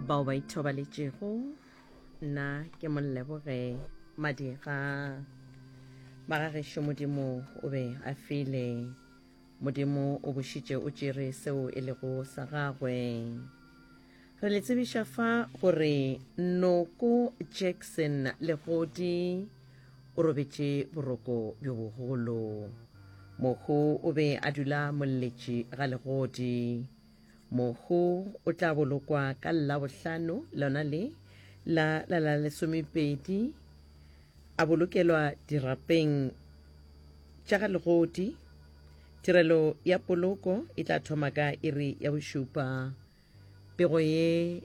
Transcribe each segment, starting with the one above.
bao ba ithobaletšego nna ke molleboge madira magagešo modimo o be a file modimo o bošitše o tšere seo e lego sa gagwe re le tsebiša fa gore noko jackson legodi o robetše boroko bjo bogolo mohu o be a dula molletši ga legodi mohu o tla bolokwa ka labohlano lona le la la la lesomepedi a bolokelwa dirapeng tša ga legodi tirelo ya poloko e tla thoma ka iri ya bošupa pego ye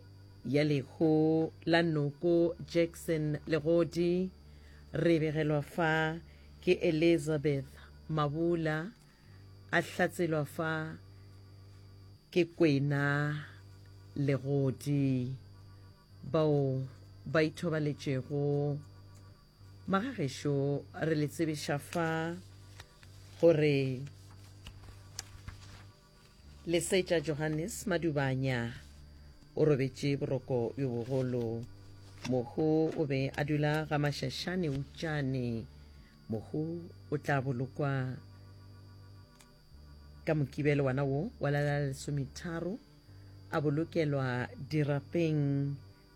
ya lehu la noko jackson legodi re begelwa fa ke elizabeth mabula A hlatselwa fa ke kwena legodi, bao ba ithobaletšego. Magagešo re le tsebiša fa gore Lesetša Johannes Madubanya o robetše boroko bjo bogolo. Mohu o be a dula ga Mašašane Utšane. Mohu o tla bolokwa ka mokibelo wana wo wa la lesometharo a bolokelwa dirapeng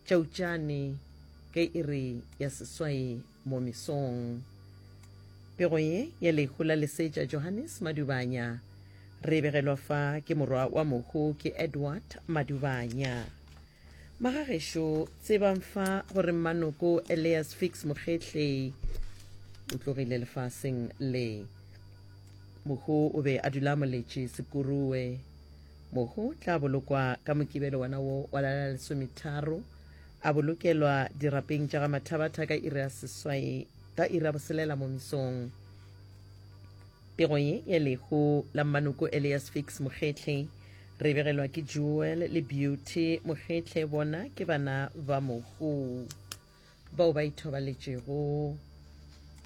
tša utšane ka iri ya seswai mo mesong pego ye ya lehu la lesetša johannes madubanya re begelwa fa ke morwa wa mohu ke edward madubanya Magagešo, tsebang fa gore mmanoko Elias Fix Mokgehle o tlogile lefaseng le. Mohu o be a dula moletše Sekurue. Mohu tla bolokwa ka mokibelo wona wo wa la la lesometharo a bolokelwa dirapeng tša ga Mathabatha ka iri ya seswai ka iri ya boselela mo misong. Pego ye ya lehu la mmanoko Elias Fix Mokgetle re begelwa ke Jewel le Beauty Mokgetle bona ke bana ba mohu bao ba ithobaletšego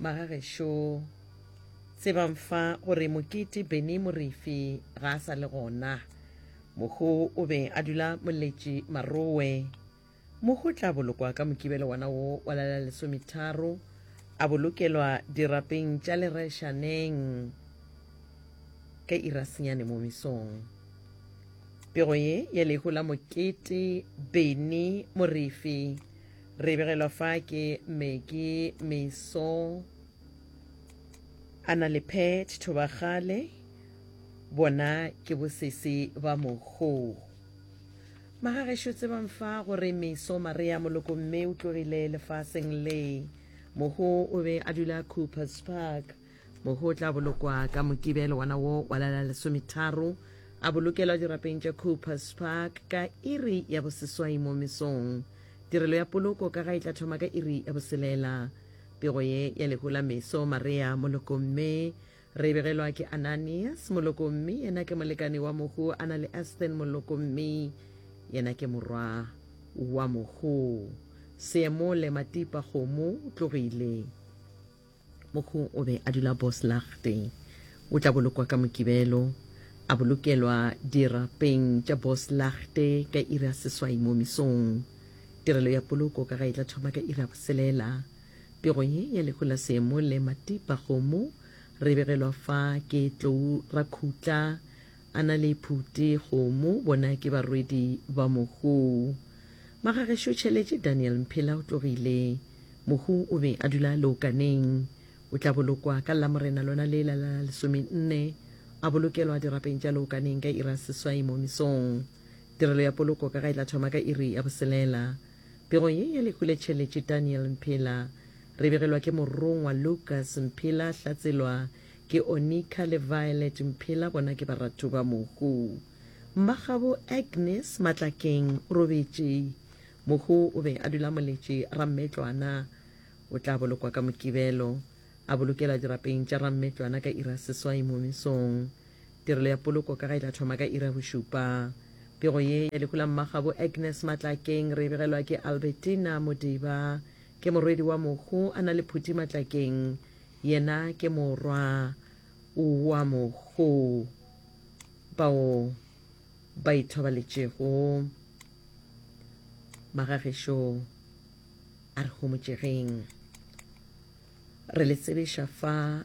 magagešo tsebang fa gore mokete Benny Morifi ga a sa le gona mohu o be a dula moletši marowe Mohu o tla bolokwa ka mokibelo wona wo wa lela lesometharo, a bolokelwa dirapeng tša lereshaneng ka irasenyane mo mesong. Pego ye ya lehu la mokete Beni Morefi re begelwa fa ke Meki Meso a na le Pet Thobagale bona ke bosese ba mohu. Magagešo tsebang fa gore meso Maria Molokomme o tlogile lefaseng le. Moho o be a dula Coopers Park. Moho o tla bolokwa ka Mokibe le wona wo wa lela lesometharo. A bolokelwa dirapeng tša Coopers Park ka iri ya boseswai mo mesong. Tirelo ya poloko ka ga e tla thoma ka iri ya boselela. Pego ye ya lehu la meso Maria Molokomme Re begelwa ke Ananias moloko mme yena ke molekane wa mohu a na le Aston moloko mme yena ke morwa wa mohu. Seemole Matipa kgomo tlogile. Mohu o be a dula Boslachte. O tla bolokwa ka Mokibelo. A bolokelwa dirapeng tša Boslachte ka iri ya seswai mo mesong. Tirelo ya poloko ka ga e tla thoma ka iri ya boselela. Pego ye ya lehu la seemo le matipa kgomo re begelwa fa ke tlou ra khutla a na le phuti kgomo bona ke barwedi ba mohu. Magagešo tšheletše Daniel Mphela o tlogile. Mohu o be a dula leokaneng. O tla bolokwa ka Lamorena lona le la la lesome nne a bolokelwa dirapeng tša leokaneng ka iri ya seswai mo mesong. Tirelo ya poloko ka ga e tla thoma ka iri ya boselela. Pego ye ya Lehuletšheletše Daniel Mphela, re begelwa ke morongwa Lucas Mphela, hlatselwa ke Onika le Violet Mphela, bona ke baratu ba mohu. Mmagabo Agnes Matlakeng o robetše. Mohu o be a dula moletše Rammetlwana. O tla bolokwa ka Mokibelo. A bolokelwa dirapeng tša Rammetlwana ka iri ya seswai mo mesong. Tirelo ya Poloko ka ga e tla thoma ka iri ya bošupa. Pego ye ya lehu la mmagabo Agnes Matlakeng re e begelwa ke Albertina Modiba. Ke morwedi wa mohu a na le Phuti Matlakeng. Yena ke morwa wa mohu bao ba ithobaletšego. Magagešo a re homotšegeng. Re le tsebiša fa.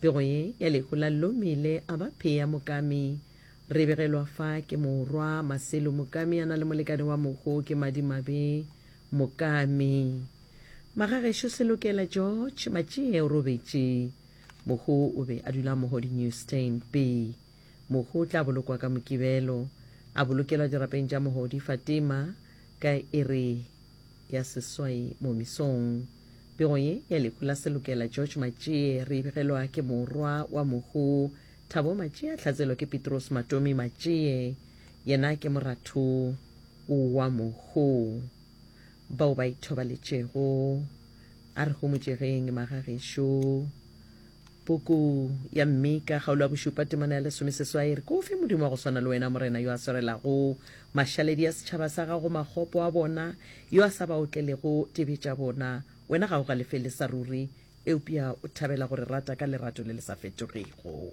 Pego ye ya lehu la Lomile a ba Phea Mokami. Re begelwa fa ke morwa Maselo Mokami a na le molekane wa mohu ke Madimabe Mokami. Magagešo Selokela George Matšie o robetše. Mohu o be a dula Mohodi New Stand, Be. Mohu o tla bolokwa ka Mokibelo. A bolokelwa dirapeng tša Mohodi Fatima ka iri ya seswai momisong. Pego ye ya lehu la Selokela George Matšie re e begelwa ke morwa wa Mohu Thabo Matšie a hlatselwa ke Pitrose Matomi Matšie. Yena ke moratho wa Mohu. Bao ba ithobaletšego a re homotšegeng magagešo. Puku ya Mika, kgaolo ya bošupa, temana ya lesomeseswai, e re, Ke o fe Modimo wa go swana le wena, Morena, yo a swarelago mašaledi a setšhaba sa gago makgopo a bona, yo a sa ba otlelego dibe tša bona? Wena ga o galefele sa ruri, eupša o thabela go re rata ka lerato le le sa fetogego.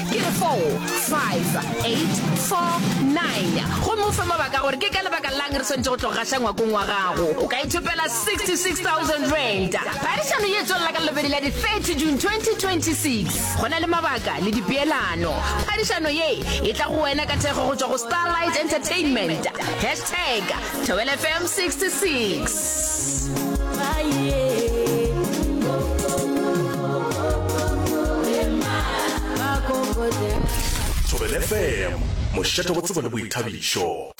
Ke 4, 5, 8, 4, 9. Gomme o fe mabaka gore ke ka lebaka lang re swantše go tlo gaša ngwakong wa gago. O ka ithopela 66,000 rand. Phadišano ye tswelela ka lobedi la di 30 June 2026. Go na le mabaka le dipeelano. Phadišano ye e tla go wena ka thekgo go tšwa go Starlight Entertainment. Hashtag Thobela FM 66. Thobela FM, mošate go tsebo le boithabišo.